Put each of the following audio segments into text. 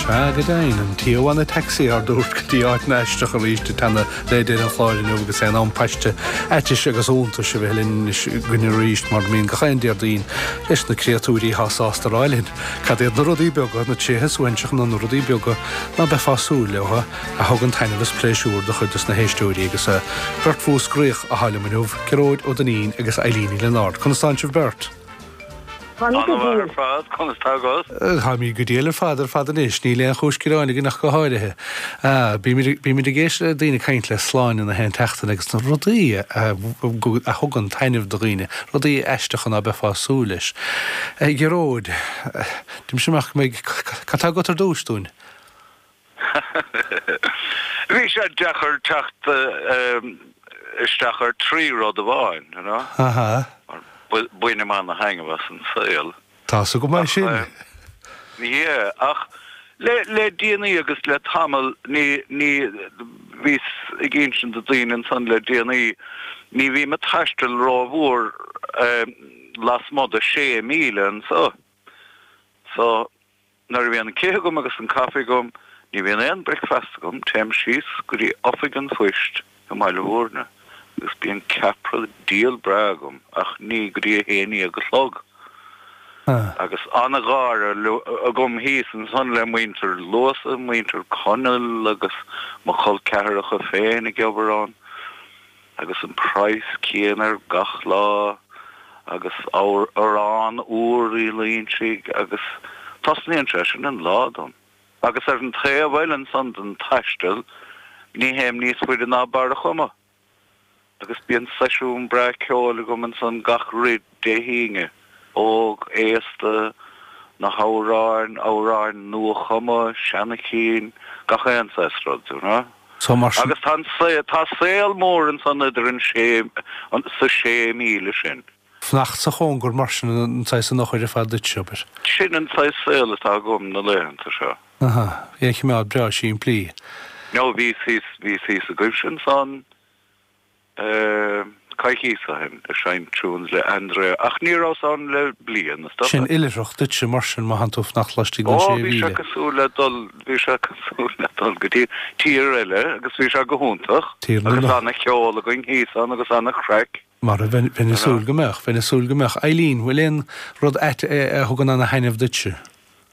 Sea, go deimhin, an t-am anois ár n-aghaidh a thabhairt go dtí Ait nó Aisteach arís i dteannta le deireadh an chláir inniu agus é in am paiste áitis agus iontais a bheith linn anois againn arís mar a bhíonn gach aon Déardaoin leis na créatúirí atá sásta rá linn cad iad na rudaí beaga, na tréithe suaithinseacha nó na rudaí beaga ná beifeá ag súil leo a thugann taitneamh is pléisiúr do chuid dos na héisteoirí agus beirt Mhúscraíoch a tharla liom inniu, Gearóid Ó Duinnín agus Eilín Uí Lionáird. Conas tánn sibh beirt? Táimid go diail ar fad, conas tá agat? Táimid go diail ar fad ar fad anois, níl aon chúis gearáin againn ach go háirithe. Bímid ag éisteacht le daoine caint le Sláine in aon tseachtain agus na rudaí a thugann taitneamh do dhaoine, rudaí aisteacha ná beifeá ag súil leis. Gearóid, déanfaimis amach go mbeidh, cad tá agat ar dtúis dúinn? Bhí sé deacair teacht isteach ar trí rud amháin, you know. Aha. Bainim ana thaitneamh as an saol. Tá fhios agam é sin. Yeah, ach le déanaí agus le tamall ní, ní, bhíos ag insint do daoine ansan le déanaí, ní bhím a' taisteal ró mhór lasmuigh de sé míle anseo. So. Nuair a bhíonn an cith agam agus an caife agam, ní bhíonn aon bricfeasta agam, téim síos go dtí Oifig an Phoist i mBaile Mhúirne agus bíonn ceapaire diail breá agam ach ní go dtí a haon dhéag a chlog. Agus an-gháire agam thíos ansan le muintir Luasa, muintir Conaill agus mo chol ceathracha féin ag obair ann. Agus an price céanna ar gach lá agus arán úr Uí Loingsigh agus tosnaíonn sé sin an lá dom. Agus ar an taobh eile ansan den taisteal ní théim níos faide ná Barr a' Chuma agus bíonn seisiún breá ceoil agam ansan gach Dé hAoine, óg, aosta, na hamhráin, amhráin nua-chumtha, seana-chinn, gach aon saghas rud, you know. So mar sin. Agus tá an saol, tá saol mór ansan idir an sé, sa sé míle sin. Fanacht sa chóngar mar sin, sin saghas an eochair ar fad duitse, abair. Sin an saghas saol atá agam na laethanta seo. Aha, é a choimeád breá simplí. No, bhí, bhí tú thíos againne ansan. coicíos ó shin ag seinnt tunes le Andrea ach ní rabhas ann le bliain is dócha. Sin oilithreacht duitse mar sin má tánn tú ag fanacht laistigh den sé mhíle. Ó bhí sé cosúil le dul, bhí sé cosúil le dul go dtí tír eile agus bhí sé go hiontach. Tír na Agus ana cheol againn thíos ann agus ana chraic. Mar a bheinn, bheinn ag súil go mbeadh, bheinn ag súil go mbeadh. Eilín, bhfuil aon rud ait a thugann ana thaitneamh duitse?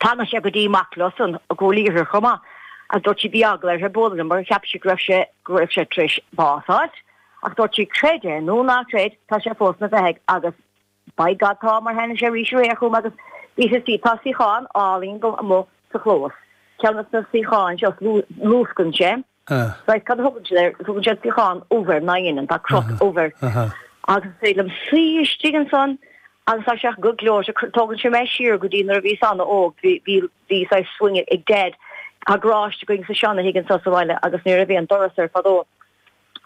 Tháinig sé go dtí mac leosan i gCúil Aodha chomh maith agus dúirt sí bhí eagla uirthi bualadh liom mar cheap sí go raibh sé go raibh sé tar éis bás fháilt ach dúirt sí creid é nó ná creid tá sé fós na bheathaigh agus by God tá mar tháinig sé arís aréir chugam agus bhí sé sí tá suíochán álainn go amuigh sa chlós ceann des na suíocháin seo luascann sé Ah. Right, cad a thugann siad air? Tugann siad suíochán ubh air ná dhéanann, tá crot ubh air. Aha. Agus is féidir liom suí istigh ansan agus tá sé ach go gleoite, tógann sé mé siar go dtí nuair a bhíos ana óg, bhí, bhí, bhí saghas swing ag Dad, tá garáiste againn sa seana thigh ansan sa bhaile agus nuair a bhí an doras air fadó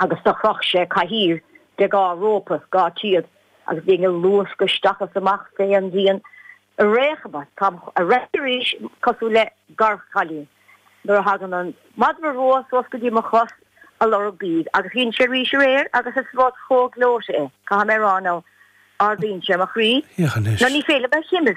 agus do chroch sé cathaoir de dhá rópa, dhá théad, agus bhínn ag luascadh isteach is amach fé an díon, a réachma, tá a raic arís cosúil le gearrchaile nuair a thagann an madra rua suas go dtí mo chos ag lorg bídh agus dhein sé arís aréir agus is rud chomh gleoite é, caithfidh mé a rá, nó ardaíonn sé mo chroí, nó ní féidir liom a chimilt.